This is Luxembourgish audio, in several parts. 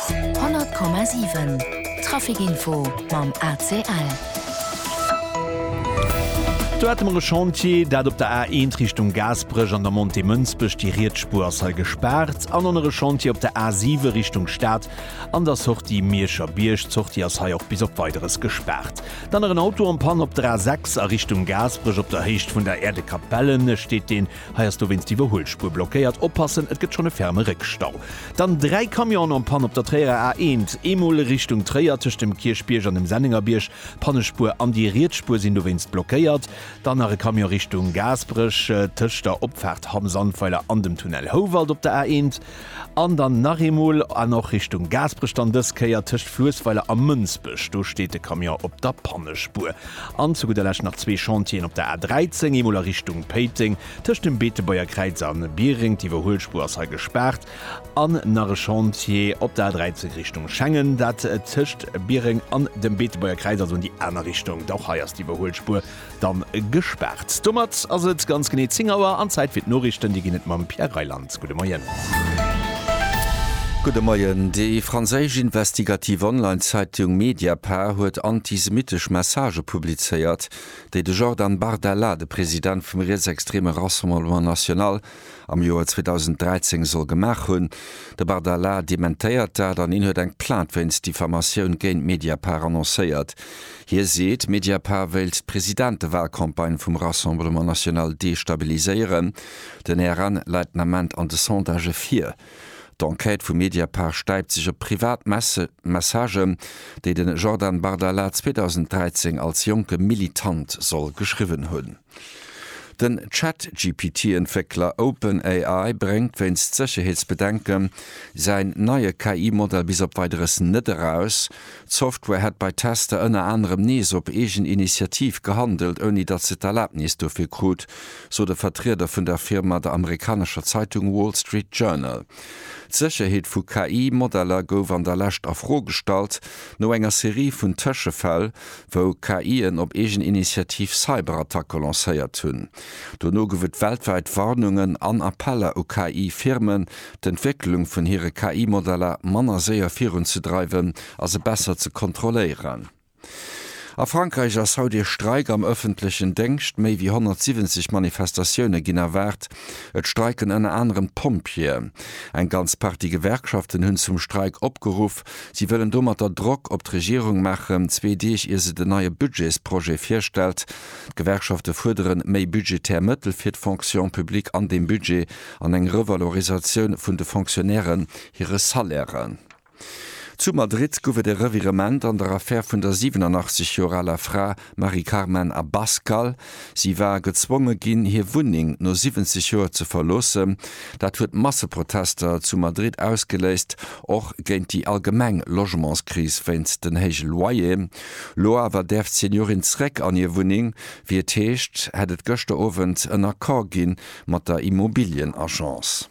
100,7 Traficinfo mam ACL. Do hate mer e Chantier, dat op der A1 Richtung Gaasperech an der Montée Mënsbech. Déi riets Spuer ass hei gespaart. An en nere Chantier op der A7 Richtung Stad an der Sortie Mierscher Bierg. D'Sortie ass hei och bis op Weideres gespaart. Dann nach en Auto am Panne op der A6 a Richtung Gaasperech op der Héicht vun der Äerdekapelle steet deen. Hei ass dowéinst d'Iwwerhuelspuer blockéiert. Oppassen, et gëtt schonn e ferme Réckstau. Dann dräi Camionen en panne op der Tréierer A 1. Eemol Richtung Tréier, tëscht dem Kierchbierg an dem Sennengerbierg. Pannespuer an déi riets Spuer sinn dowéinst blockéiert. Dann nach e Camion Richtung Gaasperech, tëscht der Opfaart Hamm-Sandweiler an dem Tunnel Houwald op der A 1. An dann nach eemol an och Richtung Gaasperech, dann dës Kéier tëscht Fluessweiler a Mënsbech. Do steet de Camion op der Pannespuer. An zu gudder Lescht nach zwee Chantieren op der A 13, eemol a Richtung Péiteng, tëscht dem Beetebuergerkräiz a Biereng. D'Iwwerhuelspuer ass hei gespaart. An nach e Chantier op der A 13 Richtung Schengen, dat tëscht Biereng an dem Beetebuergerkräiz, also an déi aner Richtung. Och hei ass d'Iwwerhuelspuer Dann gespaart. Domat ass et ganz genee 10 Auer an Zäit fir d'Noriichten. Déi ginn et mam Pierre Reyland. Gudde Moien. Gudde Moien. Déi franséisch investigativ Online-Zeitung Mediapart huet antisemittesch Messagë publizéiert, déi de Jordan Bardella, de President vum rietsextreme Rassemblement National, am Joer 2013 soll gemaach hunn. De Bardella dementéiert dat an hien huet eng Plainte wéinst Diffamatioun géint Mediapart annoncéiert. Hie seet, Mediapart wéilt d'Presidentewahlcampagne vum Rassemblement National destabiliséieren. Den RN läit den Ament an de Sondagë vir. D'Enquête vu Mediapart stäipt sech op privat Messagen, déi de Jordan Bardella 2013 als jonke Militant soll geschriwwen hunn. Den Chat-GPT-Entwéckler OpenAI bréngt wéinst Sécherheetsbedenken säin neie KI-Modell bis op Weideres net eraus. D'Software hätt bei Tester ënner anerem nees op eegen Initiativ gehandelt, ouni datt se d'Erlabnis dofir krut, sot e Vertrieder vun der Firma der amerikanescher Zeitung Wall Street Journal. D'Sécherheet vu KI-Modeller gouf an der Lescht a Fro gestallt, no enger Serie vun Tëschefäll, wou KI'en op eegen Initiativ Cyberattacke lancéiert hunn. Dono gouf et weltwäit Warnungen an Appeller u KI-Firmen, d'Entwécklung vun hire KI-Modeller manner séier virunzedreiwen a se besser ze kontrolléieren. A Frankräich ass haut ee Streik am ëffentlechen Déngscht. Méi wéi 170 Manifestatioune ginn erwaart. Et streiken ënner anerem d'Pompjeeë. Eng ganz Partie Gewerkschaften hunn zum Streik opgeruff. Si wëllen domatter Drock op d'Regierung maachen, zwee Deeg ier se den neie Budgetsprojet virstellt. D'Gewerkschafte fuerdere méi budgetär Mëttel fir d'Fonction publique an deem Budget an eng Revalorisatioun vun de Fonctionnairen hire Salairen. Zu Madrid gouf et e Revirement an der Affär vun der 87 Joer aler Fra Mari Carmen Abascal. Si war gezwonge ginn, hir Wunneng no 70 Joer ze verloossen. Dat huet Masseprotester zu Madrid ausgeléist, och géint déi allgemeng Logementskris wéinst den héije Loyer. Lo awer däerf d'Seniorin zréck an hir Wunneng. Wéi et heescht, hätt et gëschter Owend en Accord gi mat der Immobilienagence.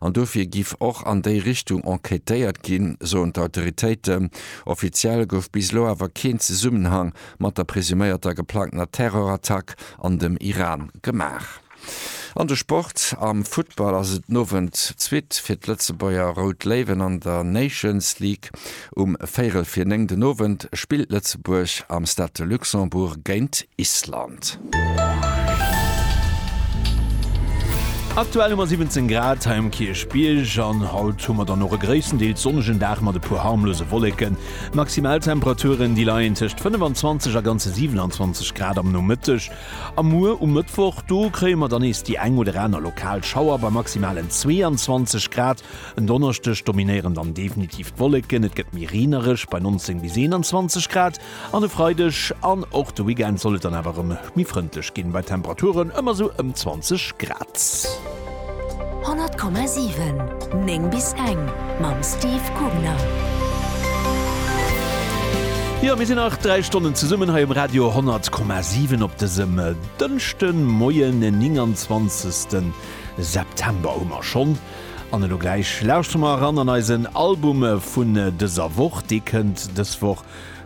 An dofir giff och an déi Richtung enquêtéiert ginn, soen d'Autoritéiten. Offiziell gouf bis elo awer keen Zesummenhang mat der presuméierter geplangtener Terror-Attack an dem Iran gemaach. An de Sport, Am Futtball ass et den Owend d'Suite fir d'Lëtzebuerger Rout Léiwen an der Nations League. Um véirel fir néng den Owend spillt Lëtzebuerg am Stade de Luxembourg géint Island. Aktuell hu mer 17 Grad hei um Kierchbierg an haut hu mer dann och e gréisstendeels sonnegen Dag mat e puer harmlose Wolleken. D'Maximaltemperaturen déi leien tëscht 25 a ganze 27 Grad am Nomëtteg. A muer um Mëttwoch, do kréie mer dann nees déi eng oder aner lokal Schauer bei maximalen 22 Grad. En Donneschdeg dominéieren dann definitiv d'Wolleken, et gëtt méi reenereg bei 19 bis 21 Grad an e Freideg an och de Weekend soll et dann awer erëm méi frëndlech ginn, bei Temperaturen ëmmer esou ëm 20 Grad. 100,7 9 bis eng mam Steve Kugner. Jo, mir sinn nach 3 Stonnen zesummen hei um Radio 100,7 op dësem Dënschde Moien, den 29. September hu mer schonn. An elo gläich lauschtere mer eran an eisen Album vun dëser Woch. Dee kënnt dës Woch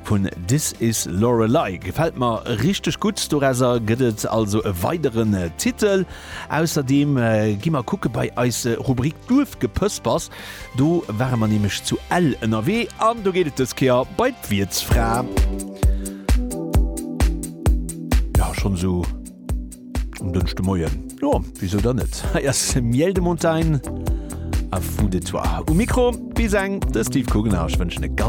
vun This Is Lorelei. Gefält mer richteg gutt. Dorauser gëtt et also e weideren Titel. Ausserdeem gi mer kucke bei eis Rubrik Duerfgepëspers. Do ware mer nämlech zu Ell ënnerwee an do geet et dës Kéier bei d'Wiertsfra. Jo, schonn esou. Um Dënschde Moien, jo, wisou dann net? Hei ass Miel de Montagne a Fou de toi. Um Mikro bis eng, de Steve Kugener. Ech wënschen e ganz.